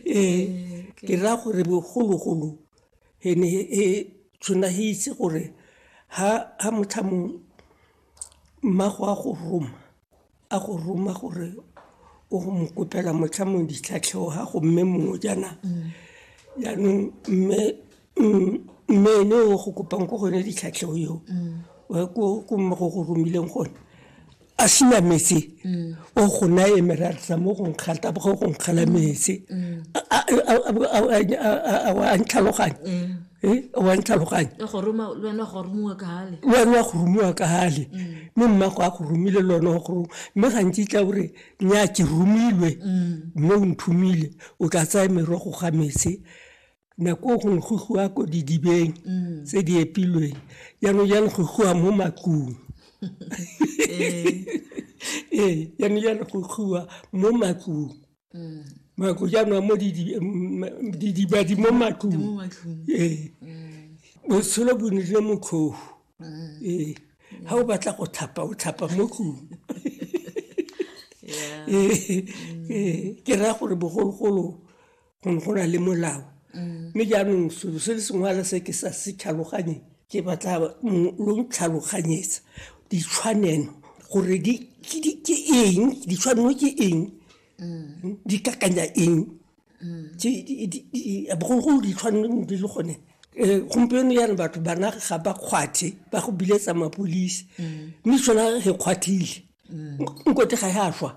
ee ke raya gore bogologolo e ne e tshwana e itse gore ha ha motlhamo mmago a go roma a go roma gore o go mo kopela motlhamo ditlhatlhego ga go mme mongwe jaana jaanong mme mm, mme ene o go kopang ko gone ditlhatlhego eo mm. ko mme go go romileng gone a sena metse mm. o go na e meratsa mo go nkgata go go nkgala metse a ntlhaloganye wa ntlhaloganye wena go rumiwa ka gale mme mmago a go romile le one go roma mme gantsi tla ore nya ke romilwe mme o nthomile o ka tsaya merogo ga metse Nako gongwe go goa ko didibeng mm. tse di epilweng jaanong jalo go goa mo makung ee jaanong jalo go goa mo makung mm. mako jaanong mo didibadi mo makung ee botshelo bo nile mokgogo ee ga o batla go thapa o thapa mo kung ee ke raya gore bogologolo gone go na le molao mme jaanong selo se le sengwala se ke sa se tlhaloganyeng ke batla lo tlhaloganyetsa ditshwanelo gore ke eng ditshwanelo ke eng di kakanya eng bogologolo ditshwanelo di le gone Eh, gompieno yana batho bana ga ba kgwathe ba go biletsa mapolisi mm. mme sona re kgwathile mm. nkote ga ya swa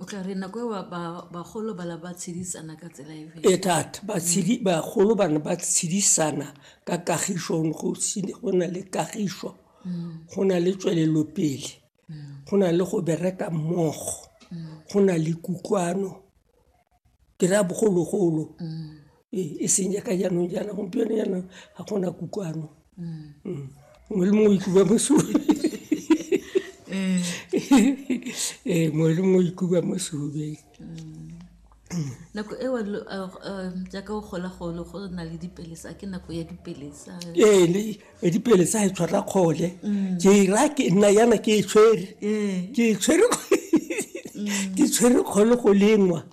o tla re nako eo bagolo bala ba tshedisana ka tsela e ee thata bagolo ba ne ba tshedisana ka kagišo go na le kagišo go na le tswelelopele go na le go bereka mmogo go na le kutlwano. ke raya bogologolo ee e seng jaaka jaanong jaana gompieno jaana ga gona kutlwano mongwe le mongwe o itloba mosomi ee mongwe le mongwe o itloba mosomi nako eo jaaka o gola golo go na le dipelesa ke nako ya dipelesa ee edipele tsa e tshwara kgole mm. ke ra ke nna yana ke e tshwere mm. ke e tshwere mm. ke tshwere kgole go lengwa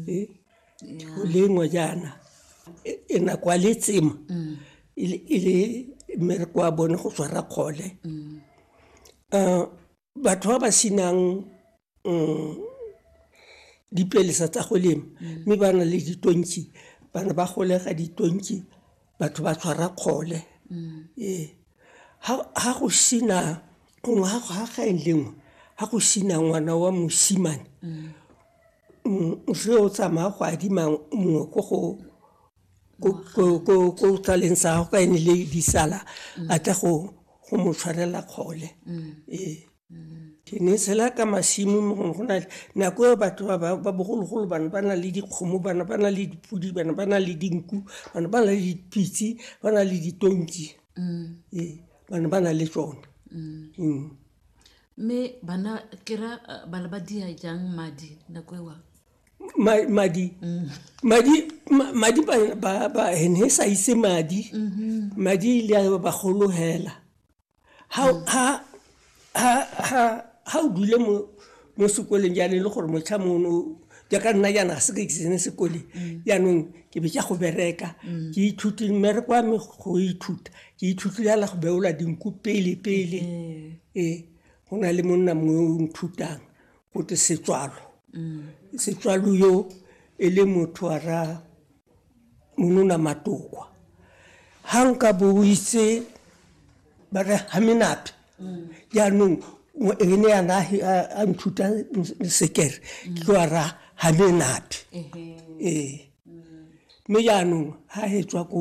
eh, go lengwa jaana e, e nako a le tsema e le mmereko wa bone go tshwara kgole um batho ba ba senang um dipelesa tsa go lema mme ba na le ditonki bana ba golega ditonki batho ba tshwara kgole ee ga go sena gongwe ga gaeng lengwe ga go sena ngwana wa mosimane o tsamaya go adima mongwe ko go ko tlaleng sa gago ka ene le disala a tla go go mo tshwarela kgole ee ke ne tshela ka masimo mo gongwe go na nako e batho ba ba bogologolo bana ba na le dikgomo bana ba na le dipodi bana ba na le dinku bana ba na le dipitse ba na le ditonki ee bana ba na le tsone mme bana kera ba le ba dia jang madi nako ewa madi madi madi ba ba ene sa ise madi madi ile a ba golohela ha ha ha ha ha o dule mo mo sekoleng ya le gore motlha mono ya ka nna yana se ka ke sene sekole yaanong ke be ke go bereka ke ithuti mmereko wa me go ithuta ke ithuti ya la go beola dinku pele pele ee go na le monna mongwe o nthutang go te setswalo setswalo yo e le motho a ra monona matokwa ha nka bo o itse ba re ha menate jaanong mo- e ne yana a- a- a nthuta sekere ke tlo a ra ha menate ee mme jaanong ha he tswa ko